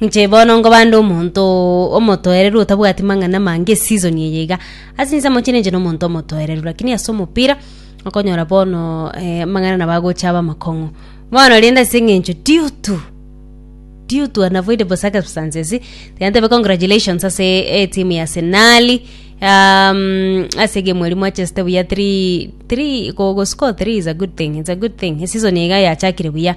Inche bono nkobande omonto omotoereru otabwati mang'ana amange esizon eye iga. Ase insemo chire inche nomonto omotoereru lakini ase omopira okonyora bono eh, amang'ana nabo agocha abe amakong'u. Bono rende ase eng'encho due to due to unavoidable circumstances tiga ntebe congratulations ase etimu ya arsenali um, ase egemu eria mwachesete buya three three go- goscore three is a good thing, it's a good thing, esizon iga yachakire buya.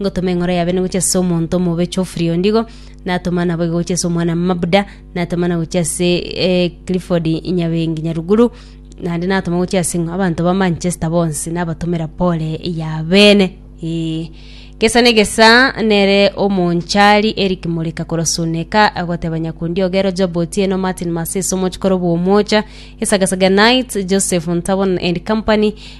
Ngotoma eng'oro ya Bene gochia ase omonto omobe Geoffrey Ondigo, natoma naboigo gochia ase omwana Mabuda, natoma na gochia ase eh, Clifford Nyabengi Nyaruguru, naende natoma gochia ase ng'a abanto ba Manchester bonsi nabatomera pole ya bene. Eh, gesa negesa nere omonchari Eric Moreka korwa Suneka agoteba Nyakundi Ogero, Job Otieno, Martin Masese omochikoro bw'Omocha, Esagasaga Night, Joseph Ntabon and Company,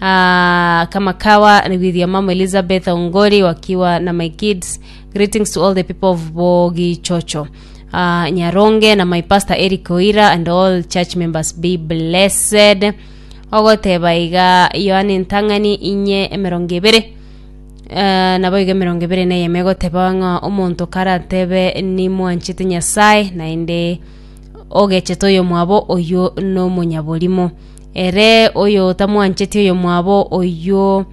Ah, kama kawa with your mom Elizabeth Ongori wakiwa na my kids. Greetings to all the people of Bogi Chocho. Uh, Nyaronge na my pastor Eric Oira and all church members be blessed. Ogoteba iga Yohane Ntang'ani inye emerongo ebere Uh, nabo iga emerongo ebere na eyemo egoteba ng'a omonto karatebe nimwanchete nyasaye naende ogechete oyo mwabo oyo nomonyaborimo Ere oyotamwancheti oyomwabo oyio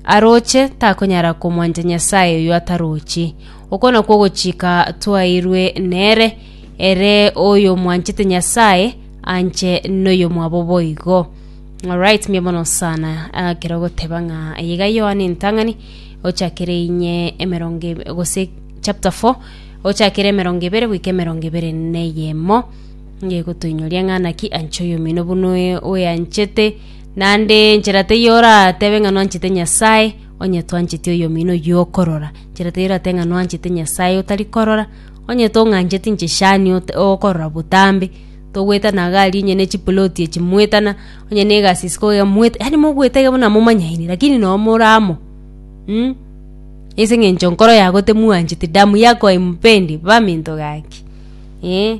aroche, takonyara komwancha Nyasae oyio atarochi. Okwo nakwo ogochika twaeirwe nere, Ere oyomwanchete Nyasae, anche noyomwabo boigo. Alright, mbuya mono sana ah, kero goteba ng'a iga Yohana entang'ani ochakere inye emerongo ebe- gose chapter 4 ochakere emerongo ebere goika emerongo ebere neyemo Ngegotoinyoria ng'a naki anche oyomino buna oyo oyanchete, naende nchera teiyo oratebe ng'a nwanchete Nyasae, onye twancheti oyomino oyio okorora. Nchera teiyo oratebe ng'a nwanchete Nyasae otari korora, onye tong'ancheti inche shani ota okorora botambe, togoetana iga aria onye ne chiploti echi moetana, onye na egasi isiko iga moeta yaani mogoeta iga buna momanyaine lakini noo more amo mm. Ase eng'encho nkoro yago temwancheti, damu yako haimpendi, baminto gaki eeh.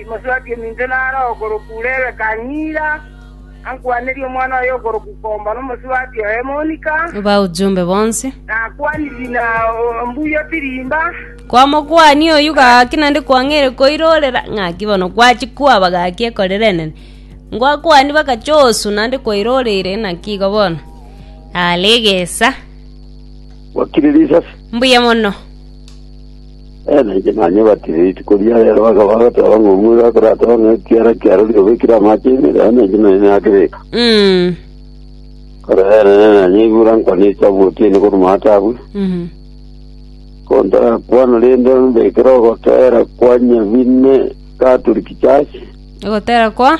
Timoswaki ominto naro okorokwa Rebeka ng'ira ankwanerie omwana oye okorokwa Komba na omoswaki oye Monika, Baujumbe bonsi. nakwanirie na ombuya Pirimba. Kwamokwania oyio gaki naende kwang'eire koirorera ng'aki bono gwachia kwaba gaki ekorera enene. Ngwakwani bakachosu naende kwairoreire naki igo bono are egesa. Wakire risasi. Mbuya mono. Eena, inche naanye obatire rituko ria reero. Bakaba bagoteba ng'a omwega akorateba ng'a ekiara kia rori obekire amaache ime, reero nainche naanye nakebeka. Mm. Korende enene naanye igura nkwane esabu otiene korwa matabwe, Mhm. kontarakwana rende ombekere ogoteera kwa nyabine Catholic Church. Ogotera kwa?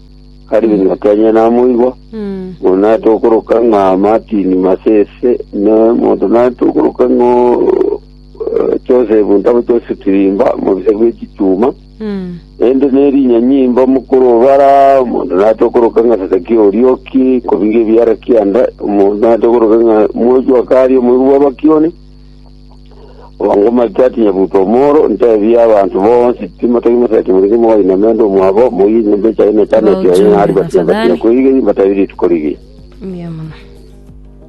Tari ng'ake onye namoigwa, Mm. mono naete okoroka ng'a Martin Masese, ne monto naete okoroka ng'a eh, Joseph ntabo Joseph Tirimba, mobisa bwe chituma. Mm. Ende nerinya nyimba mukuru obara omonto naete okoroka ng'a Sadaki Orioki, kobinga ebiara kianda, omonto naete okoroka ng'a Mwojo Akari, omoigwa bw'abakioni. Bwango Malita atinye butwa omoro, ntebie abanto bonsi, Timotaki moseti morenge mogainame ande omwabo, moige enyomba echaye na etameti yaye, ng'a ribatie-batie koigei, mbatabire rituko rigiya. Mbuya mono.